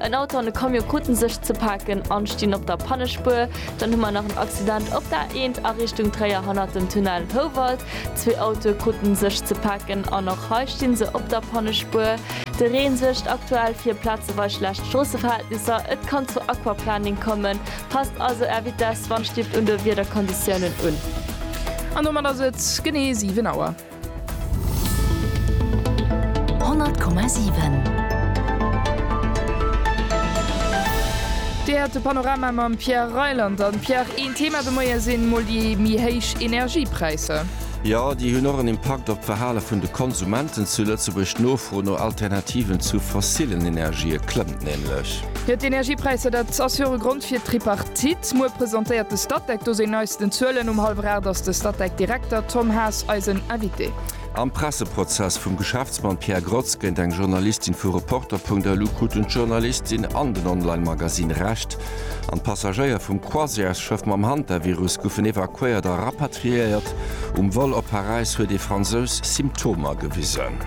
En Auto an e Camion kruten sech ze paken an stinn op der Pannespuer. Dann hu mer nach en Accident op der A1 a Richtung Tréier hannert dem Tunnel Houwald. Zwee Autoe kruten sech ze paken an och hei stinn se op der Pannespuer. De Reen suergt aktuell fir plazewei schlecht Stroosseverhältnisser. Et kann zu Aquaplaning kommen. Passt also Är Vitess, Wandstift un de Wiederkonditiounen un. An domat ass et genee 7 Auer. 100,7. Dir häert de Panorama mam Pierre Reyland an. Pierre, een Thema de Moie sinn mol déi méi héich Energiepräisser. Jo, déi hunn och en Impakt op d'Verhale vun de Konsumenten zu Lëtzebuerg. D'Nofro no Alternativen zu fossillen Energië klëmmt nämlech. Jo, d'Energiepräisser, dat ass jo och e Grond fir d'Tripartite. Muer presentéiert de Statec do seng neisten Zuelen. Um hallwer 8 ass de Statec-Direkter Tom Haas eisen Invité. Am Presseprozess vum Geschäftsmann Pierre Grotz géint eng Journalistin vu Reporter.lu kruten d'Journalistin an den Online-Magazine Recht. An d'Passagéier vum Croisièresschëff mam Hantavirus goufen evakuéiert a rapatriéiert. Um Vol op Paräis huet ee Fransous Symptomer gewisen.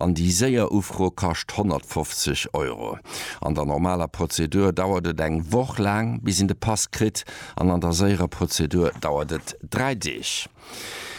an déi séier Ufro kascht 150 Euro. An der normaler Prozedur dauert et eng Woch laang, bis een de Pass kritt an an der séierer Prozedur dauert et dräi Deeg.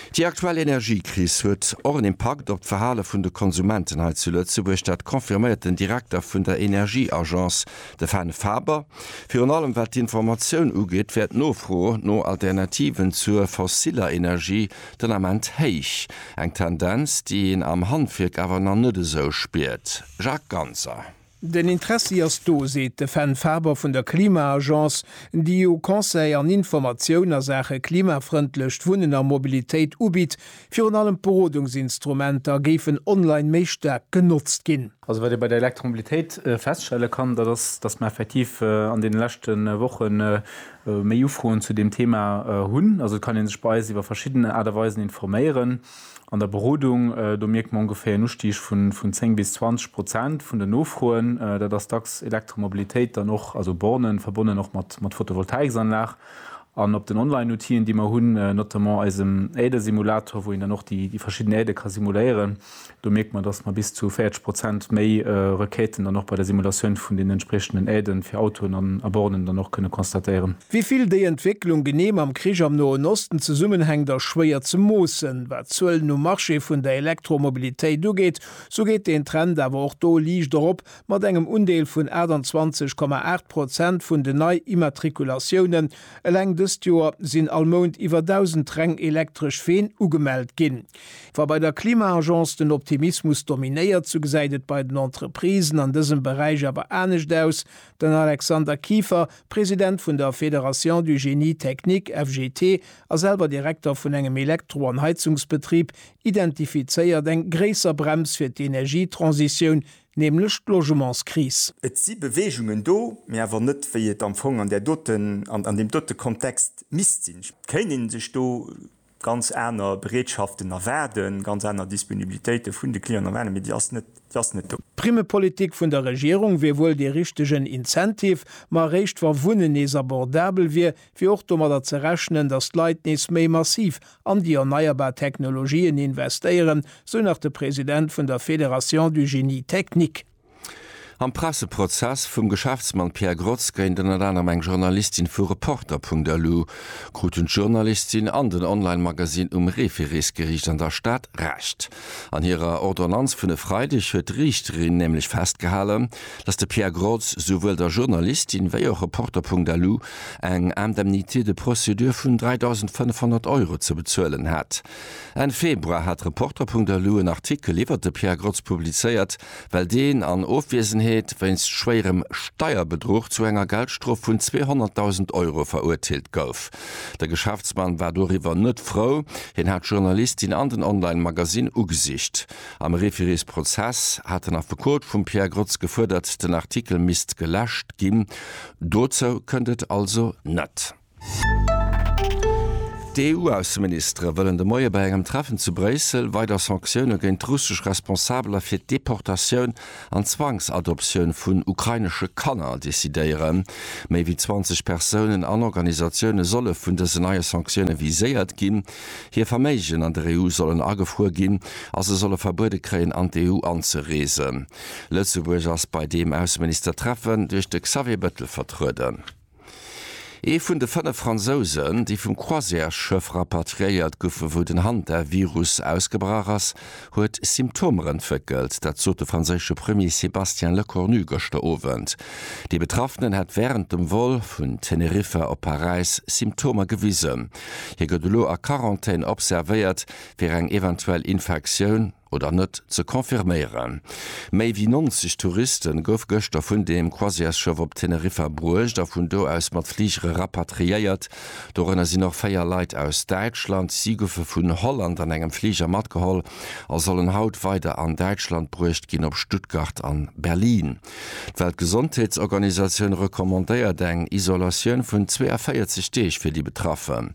Déi aktuell Energiekris huet och en Impakt op d'Verhale vun de Konsumenten hei zu Lëtzebuerg. Dat confirméiert den Direkter vun der Energieagence, de Fane Faber. Virun allem wat d'Informatioun ugeet, wär d'Nofro no Alternativen zur fossiller Energie Den Ament héich, eng Tendenz, déi een am Handwierk awer nach net esou spiert. Jacques Ganser. Den Interessi ass do, seet de Fenn Faber vun der Klima-Agence, déi jo Conseil an Informatioun a Saache klimafrëndlecht Wunnen a Mobilitéit ubitt. Virun allem d'Berodungsinstrumenter géifen online méi staark genotzt ginn. Also wat ee bei der Elektromobilitéit feststelle kann, dat ass, datt mer effektiv an deene leschte Woche méi Ufroen zu deem Thema hunn. Also et kann ee sech bei eis iwwer verschidden Aart a Weisen informéieren. An der Berodung, do mierkt mer ongeféier en Ustig vun 10 bis 20 Prozent vun den Nofroen. Dat ass dacks Elektromobilitéit, dann och also Bornen, verbonnen och mat Photovoltaiksanlag. An op den Online-Outill'en, déi mer hunn, notamment eisem Äerdesimulator, wou een dann och déi verschidden Äerde ka simuléieren, Do mierkt mer, dass mer bis zu 40 Prozent méi Requêten dann och bei der Simulatioun vun den entspriechenden Aiden fir Autoen a Bornen dann och kënne constatéieren. Wéi vill déi Entwécklung genee mam Krich am Noen Osten zesummenhänkt, ass schwéier ze moossen. Wat d'Zuelen um Marché vun der Elektromobilitéit ugeet, sou geet deen Trend awer och do liicht erop, mat engem Undeel vun 28,8 Prozent vun den Nei-Immatrikulatiounen. Eleng dëst Joer sinn all Mount iwwer 1.000 reng elektresch Ween ugemellt ginn. Wa bei der Klima-Agence den Optimismus dominéiert, sou gesäit et bei den Entreprisen an dësem Beräich awer anescht aus. Den Alexander Kieffer, President vun der Fédération du Génie Technique, FGT, a selwer Direkter vun engem Elektro an Heizungsbetrib, identifizéiert eng gréisser Brems fir d'Energietransitioun, nämlech d'Logementskris. Et si Beweegungen do, mee awer net wéi et am Fong an där doten, an deem dote Kontext misst sinn. Et kéint ee sech do ganz aner Bereetschaften erwaarden, ganz aner Disponibilitéite vun de Clienten erwaarden, mee déi ass net, déi ass net do. D'Primmepolitik vun der Regierung wier wuel dee richtegen Incentive, ma eréischt wa Wunnen nees abordabel wier, wier och domadder ze rechnen, datt d'Leit nees méi massiv an déi erneierbar Technologien investéieren, sou nach de President vun der Fédération du Génie technique. Am Presseprozess vum Geschäftsmann Pierre Grotz géint ënnert anerem eng Journalistin vu Reporter.lu kruten d'Journalistin an den Online-Magasinn um Refereesgeriicht an der Stad Recht. An hirer Ordonnanz vun e Freideg huet d'Riichterin nämlech festgehalen, datt de Pierre Grotz souwuel der Journalistin wéi och Reporter.lu eng Indemnité de procédure vun 3.500 Euro ze bezuelen hat. Enn Februar hat Reporter.lu en Artikel iwwert de Pierre Grotz publizéiert, well deen an Ofwiesenheet wéinst schwéierem Steierbedruch zu enger Geldstrof vun 200.000 Euro verurteelt gouf. De Geschäftsmann war doriwwer net frou, hien hat d'Journalistin an den Online-Magasinn ugesicht. Am Referisprozess hat den Affekot vum Pierre Grotz gefuerdert, den Artikel misst geläscht ginn. Dozou kënnt et also net. D'EU-Ausseministere wëllen de Moie bei engem Treffen zu Bréissel weider Sanktioune géint russesch Responsabeler fir d'Deportatioun an Zwangsadoptioun vun ukrainesche Kanner decidéieren. Méi wéi 20 Persounen an Organisatioune solle vun dësen neie Sanktioune viséiert ginn. Hir Verméigen an der EU sollen agefruer ginn a se solle verbuede kréien an d'EU anzereesen. Lëtzebuerg ass bei deem Ausseministertreffen duerch de Xavier Bettel vertrueden. Ee vun de fënnef Fransousen, déi vum Croisièresschëff rapatriéiert goufen, wou den Hantavirus ausgebrach ass, huet Symptomer entwéckelt. Dat sot de franséische Premier Sébastien Lecornu gëschter Owend. Dee Betraffenen hätt wärend dem Vol vun Teneriffa op Paräis Symptomer gewisen. Hie gëtt elo a Quarantän observéiert, fir eng eventuell Infektioun. oder net ze confirméieren. Méi wéi 90 Touriste gouf gëschter vun deem Croisièresschëff op Teneriffa bruecht a vun do aus mat Fligere rapatriéiert. Dorënner sinn och 4 Leit aus Däitschland. Si goufe vun Holland an engem Fliger matgeholl a sollen haut weider an Däitschland bruecht ginn, op Stuttgart an Berlin. D'Weltgesondheetsorganisatioun recommandéiert eng Isolatioun vun 42 Deeg fir déi Betraffen.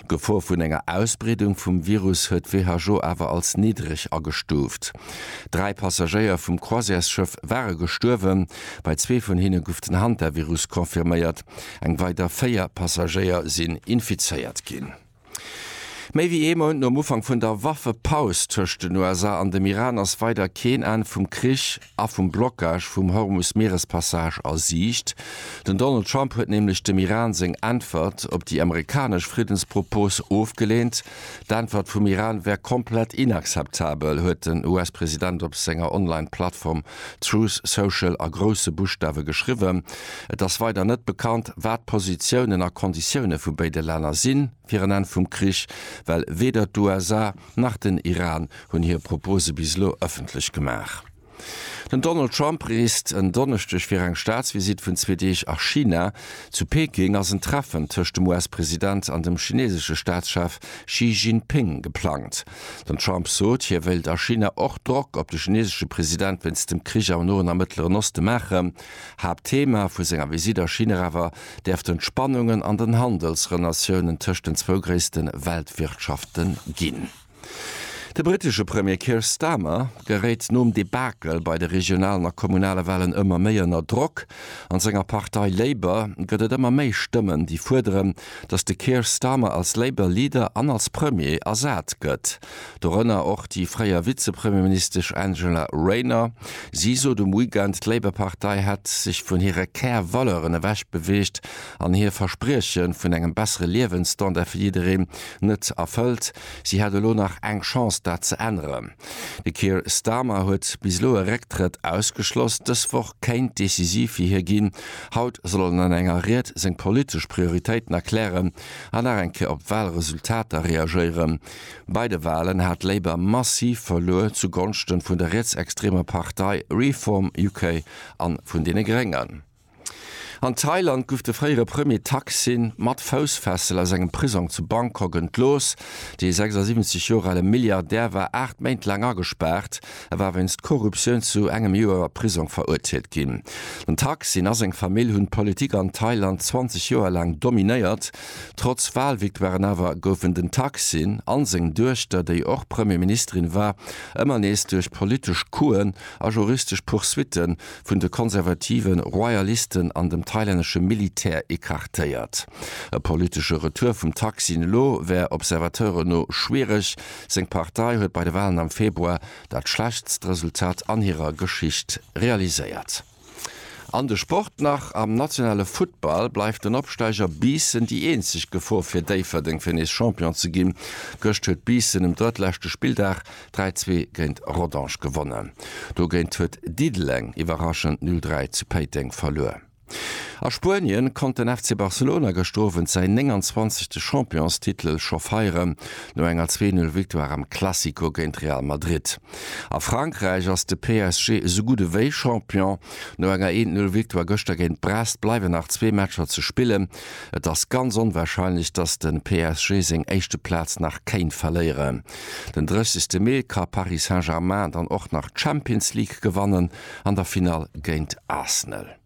D'Gefor vun enger Ausbreedung vum Virus huet d'WHO awer als niddreg agestuuft. Dräi Passagéier vum Croisièresschëff ware gestuerwen, bei zwee vun hinne guff den Hantavirus confirméiert, eng weider véier Passagéier sinn infizéiert ginn. Méi wéi ee Mount nom Ufank vun der Waffepaus tëscht den USA an dem Iran ass weider keen Enn vum Krich a vum Blockage vum Hormus-Mierespassage a Siicht. Den Donald Trump huet nämlech dem Iran seng Äntwert op déi amerikanesch Friddenspropos ofgeleent. D'Äntwert vum Iran wär komplett inakzeptabel, huet den US-President op senger Online-Plattform Truth Social a grousse Buschtawe geschriwwen. Et ass weider net bekannt, wat d'Positiounen a Konditioune vu béide Länner si fir en Enn vum Krich, well weder d'USA nach den Iran hunn hir Propose bis elo ëffentlech gemaach. Den Donald Trump reest en Donneschdeg fir eng Staatsvisitt vun zwee Deeg a China. Zu Peking ass en Treffen tëscht dem US-President an dem chineesesche Staatschef Xi Jinping geplangt. Den Trump sot, hie wéilt a China och Drock op de chinesesche President wéinst dem Krich am Noen a Mëttleren Oste maachen. Haaptthema vu senger Visitt a China awer däerften d'Spannungen an den Handelsrelatiounen tëscht den zwou gréisste Weltwirtschafte ginn. De britesche Premier Keir Starmer geréit nom Debakel bei de regionalen a kommunale Wahlen ëmmer méi ënner Drock. An senger Partei Labour gëtt et ëmmer méi Stëmmen, déi fuerderen, datt de Keir Starmer als Labour Leader an als Premier ersat gëtt. Dorënner och déi fréier Vizepremierministesch Angela Rayner. Si sot um Weekend, d'Labour-Partei hätt sech vun hire Kär-Valeuren ewech beweegt an hir Versprieche vun engem bessere Liewensstandard fir jiddereen net erfëllt. Si hätt elo nach eng Chance, dat ze änneren. De Keir Starmer huet bis elo e Récktrëtt ausgeschloss. Dës Woch kéint decisiv fir hie ginn. Haut soll en an enger Ried seng politesch Prioritéiten erklären an nach eng Kéier op Walresultater reagéieren. Bei de Walen hat Labour massiv verluer zu Gonschte vun der rietsextremer Partei Reform UK an vun deene Gréngen. An Thailand guff de fréiere Premier Thaksin mat Foussfessel aus engem Prisong zu Bangkok entlooss. Dee 76 Joer ale Milliardär war 8 Méint laang agespaart. E war wéinst Korruptioun zu engem Joer a Prisong verurteelt ginn. Den Thaksin a seng Famill hunn d'Politik an Thailand 20 Joer laang dominéiert. Trotz Walvictoiren awer goufen den Thaksin an seng Duechter, déi och Premier Ministerin war, ëmmer nees duerch politesch Couxen a juristesch Poursuitten vun de konservative Royalisten an dem thailännesche Militär ecartéiert. E politesche Retour vum Thaksin elo wär Observateuren no schwiereg. Seng Partei huet bei de Walen am Februar dat schlechtst Resultat an hirer Geschicht realiséiert. An de Sport nach, Am nationale Futtball bleift den Opsteiger Biissen déi eenzeg Gefor fir Déifferdeng fir nees Champion ze ginn. Gëscht huet Biissen um drëttleschte Spilldag 3, 2 géint Rodange gewonnen. Dogéint huet Diddeleng iwwerraschend 0, 3 zu Péiteng verluer. A Spuenien konnt den FC Barcelona gëschter Owend säin 29. Championstitel scho feieren, no enger 2, 0 Victoire am Classico géint Real Madrid. A Frankräich ass de PSG esou gutt ewéi Champion. No enger 1, 0 Victoire gëschter géint Brest bleiwen nach zwee Matcher ze spillen. Et ass ganz onwarscheinlech, datt de PSG seng éischte Plaz nach kéint verléieren. Den 30 Mee ka Paris Saint-Germain dann och nach d'Champions League gewannen, an der Finall géint Arsenal.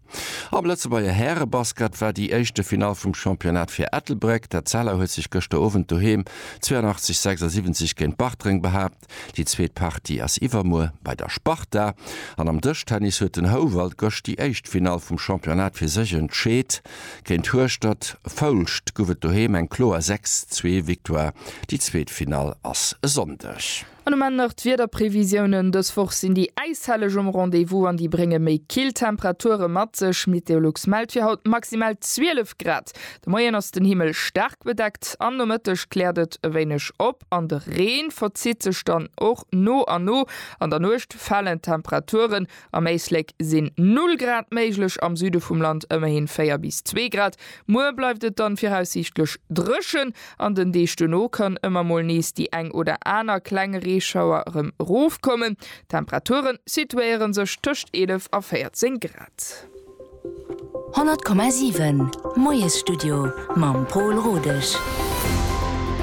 Am Lëtzebuerger Härebasket war déi éischte Finall vum Championnat fir Ettelbréck. D'Etzella huet sech gëschter Owend doheem 82, 76 géint Bartreng behaapt. Déi zweet Partie ass iwwermuer bei der Sparta. An am Dëschtennis huet den Houwald gëscht déi éischt Finall vum Championnat fir sech entscheet. Géint Hueschtert, Foulscht, guff et doheem eng kloer 6, 2 Victoire. Déi zweet Finall ass e Sonndeg. An um Enn nach d'Wiederprevisiounen, Dës Woch sinn déi Äishelleg um Rendez-vous an déi brénge méi kill Temperature mat sech. Meteolux mellt fir haut maximal 12 Grad. De Moien ass den Himmel staark bedeckt, am Nomëtteg kläert et e wéineg op an de Reen verzitt sech dann och no a no. An der Nuecht falen d'Temperature Am Éislek sinn 0 Grad méiglech, am Süde vum Land ëmmerhin 4 bis 2 Grad. Muer bleift et dann viraussiichtlech dréchen. An den Deeg duerno kann ëmmer mol nees déi eng oder aner kleng Reeschauer erëm erofkommen. D'Temperature situéiere sech tëscht 11 a 14 Grad. 100,7 Moiesstudio mam Pol Rodesch.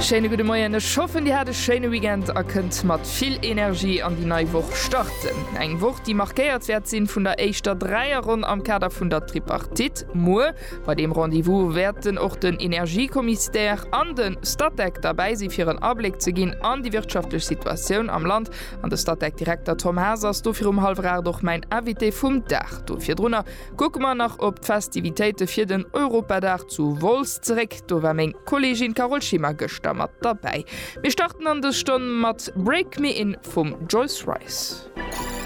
Schéine gudde Moien, ech hoffen Dir hat e schéine Weekend a kënnt mat vill Energie an déi nei Woch starten. Eng Woch déi markéiert wäert sinn vun der éischter Dräierronn am Kader vun der Tripartite. Muer bei deem Rendez-vous wäerten och den Energiekommissdär an den Statec derbäi sinn fir en Abléck ze ginn an déi wirtschaftlech Situatioun am Land An de Statec-Direkter Tom Haas ass do virum hallwer 8 och mäin Invité vum Dag. Do virdrunner kucke mer nach op d'Festivitéite fir den Europadag zu Wolz zeréck. Do war meng Kolleegin Carole Schimmer gëschter mat derbäi. Mir starten an dës Stonn mat Break Me In vum Joyce Wrice.